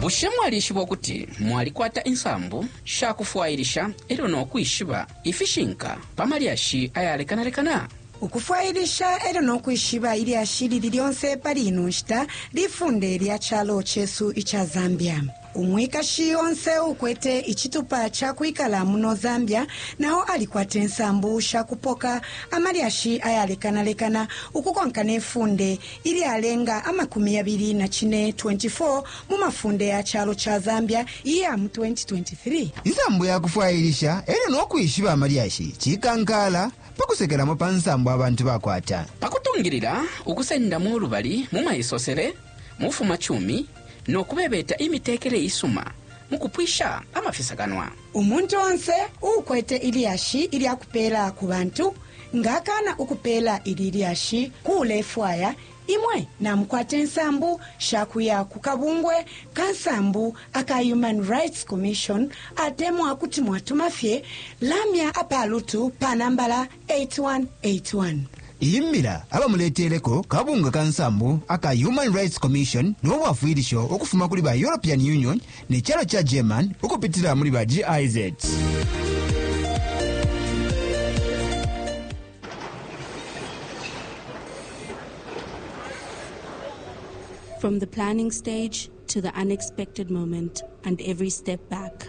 Bushe mwalishiba ukuti mwalikwata insambu sha kufwailisha e lyo no kwishiba ifishinka pa malyashi ayalekanalekana? ukufwailisha e lyo no kwishiba ilyashi ilili lyonse pali ino nshita lifunde lya calo cesu ica zambia. Umwikashi onse uukwete icitupa ca kwikala muno Zambia na o alikwata insambu sha kupoka amalyashi ayalekanalekana ukukonka ne funde ilyalenga amakumi yabili na cine, 24 mu mafunde ya calo ca Zambia iya mu 2023. Insambu ya kufwailisha e lyo no kwishiba amalyashi cikankaala pa kusekelamo pa nsambu abantu bakwata. Pa kutungilila ukusendamo ulubali mu maisosele, mu bufumacumi, no kubebeta imitekele isuma mu kupwisha amafisakanwa. Umuntu onse uukwete ilyashi ilya kupeela ku bantu nga akaana ukupeela ili lyashi ku ulefwaya, imwe namukwata insambu sha kuya ku kabungwe ka nsambu aka Human Rights Commission atemwa kuti mwatuma fye lamya apalutu pa nambala 8181. Iyi mbila abamuleteleko kabunga ka nsambu aka Human Rights Commission no bwafwilisho ukufuma kuli ba European Union ne calo ca German ukupitila muli ba GIZ. From the planning stage to the unexpected moment and every step back.